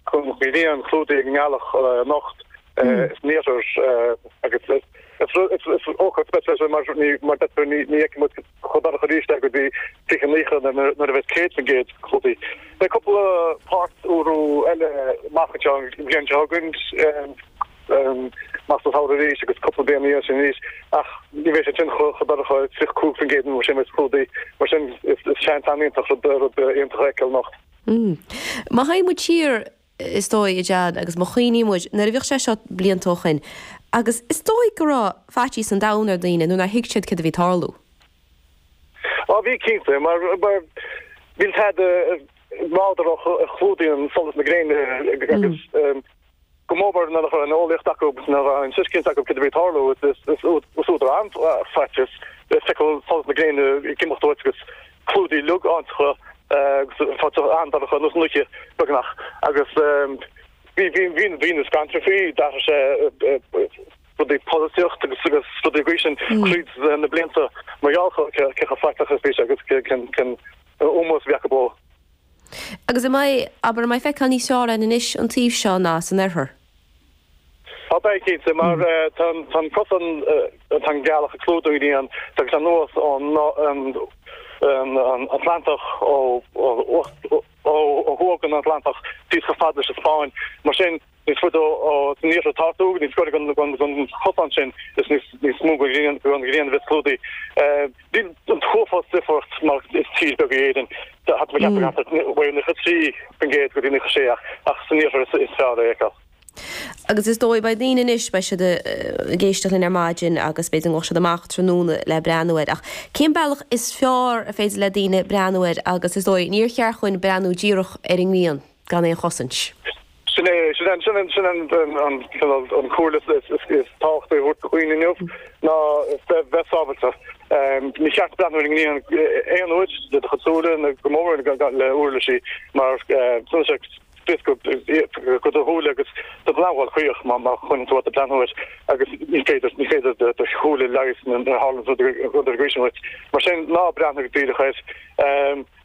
gcéad den ghrian clúdaithe ag an ngealach anocht san iarthar agus is ócáid speisialta é mar ní fheicfidh muid chomh dorcha arís é go dtí 2090 nuair a bheas 100% clúdaithe. Beidh cúpla páirt-urú eile amach anseo an bhliain seo chugainn, amach sa samhradh arís agus cúpla bliain ina dhiaidh sin arís ach ní bheidh sé sin chomh dorcha, 35% nó mar sin, a bheas clúdaithe. Mar sin is seans an-iontach rud iontach a fheiceáil anocht. Umm. Má théann muid siar, is dóigh, a John, agus má chuimhníonn muid, nuair a bhíodh sé seo blianta ó shoin, agus is dóigh go raibh faitíos an domhain ar dhaoine nuair nár thuig siad céard a bhí ag tarlú. Á, bhí cinnte, mar níl tada nádúrtha a chlúdaíonn solas na gréine agus. go mór mór nuair nach raibh an eolaíocht acu, ná an tuiscint acu céard a bhí ag tarlú. Is údar an-fhaitíos é feiceáil solas na gréine ag imeacht uait agus clúdaithe liogáinteacha agus fáil an-dorcha nós an oíche, beagnach. Agus bhí daoine scanraithe faoi, d'athraigh sé rudaí polaitíocht agus rudaí an chaoi sin tríd na blianta mar gheall cé chomh faiteach is bhí sé agus cén ómós a bhí acu dó. Agus an mbeidh, abair, an mbeidh feiceáil níos fearr air anois an taobh seo ná san oirthear? Á, beidh, cinnte, mar tá an cosán atá an ghealach ag clúdú an ghrian, tagann sé anuas ón Atlantach, ó thuaidh den Atlantach, síos chomh fada leis an Spáinn, mar sin. níos faide san iarthar atá tú, níos gaire don chosán sin is níos mó den ghrian a bheas clúdaithe. Níl an t-uafás difríocht mar is tír beag í Éirinn. Thart fá cheathrar measair de mhaol 93% go dtí 96 ach san iarthar is fearr é a fheiceáil. Agus is dóigh beidh daoine anois, beidh siad ag éisteacht linn ar maidin agus b'fhéidir go mbeadh siad amach tráthnóna le breathnú air. Ach cén bealach is fearr ar féidir le daoine breathnú air agus is dóigh níor cheart dhúinn breathnú díreach ar an ngrian. gan aon chosaint. Sin é, sin an comhairle is tábhachtaí a thabhairt do dhaoine inniu ná bheith sábhailte. Ní cheart breathnú ar an ngrian aon uair le do chuid súile, ná go mór mhór le huirlisí mar tugann sé scrios go do shúile agus d'fhéadfá a dhul caoch má choinníonn tú ort ag breathnú air agus ní féidir, ní féidir do shúile leigheas nuair a tharlaíonn rud mar sin duit. Mar sin, ná breathnaigh díreach air.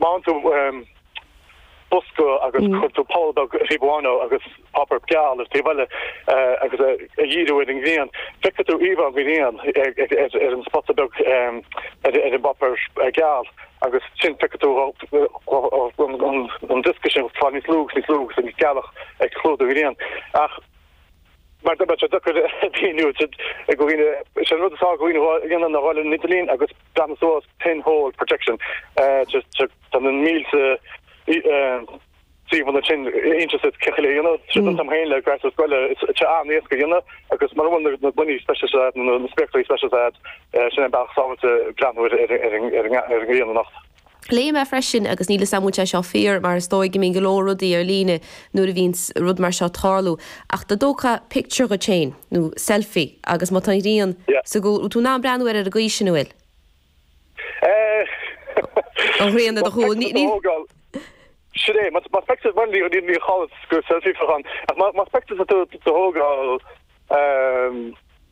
Má fhaigheann tú bosca agus cuireann tú poll beag taobh amháin de agus páipéar geal ar an taobh eile agus é a dhíriú ar an ngrian. Feicfidh tú íomhá an ghrian ar an spota beag ar an bpáipéar geal agus ansin feicfidh tú an diosca sin ag fáil níos lú agus níos lú agus an ghealach ag clúdú an ghrian. Ach mar go mbeadh sé deacair a mhíniú do dhaoine, is é an rud is éasca a dhéanamh ná a dhul ar an idirlíon agus. Breathnú suas pin hole projection tá na mílte suíomhanna inti sa chéad chuile aonad. Tríd an t-am féin le gasúir scoile is tá sé an-éasca a dhéanamh agus mura bhfuil na gloiní speisialta agat nó na spéaclaí speisialta agat, sin é an bealach is sábháilte breathnú ar an ngrian anocht. Léigh mé freisin, agus níl 'fhios a'm an bhfuil sé seo fíor, mar is dóigh go mbíonn go leor rudaí ar líne nuair a bhíonn rud mar seo ag tarlú, ach dá dtógfá pictiúr dhíot féin, nó selfie, agus má tá an ghrian Yeah. sa gcúl, go bhfuil tú in ann breathnú air ar an gcaoi sin, an bhfuil? Eh. An ghrian ar do chúl. Ní, ní. Sin é, más speiceas bhain mé níor mhír chall gur selfie a bheadh ann, ach más speiceas a tú a thógáil, eh.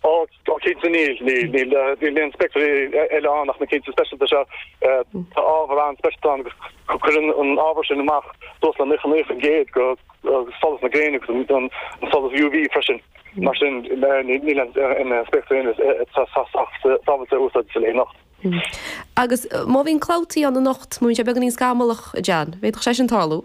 Ó, go cinnte níl. Níl aon spéaclaí eile ann ach na cinn speisialta seo. Tá ábhar an-speisialta ann agus cuireann an ábhar sin amach dúshlán 99% dho sholas na gréine agus an solas UV freisin. Mar sin níl aon spéaclaí eile atá sách sábháilte a úsáid sa leith anocht. Agus má bhíonn clabhtaí ann anocht, má bhíonn sé beagáinín scamallach, a John. D'fhéadfadh sé sin tarlú.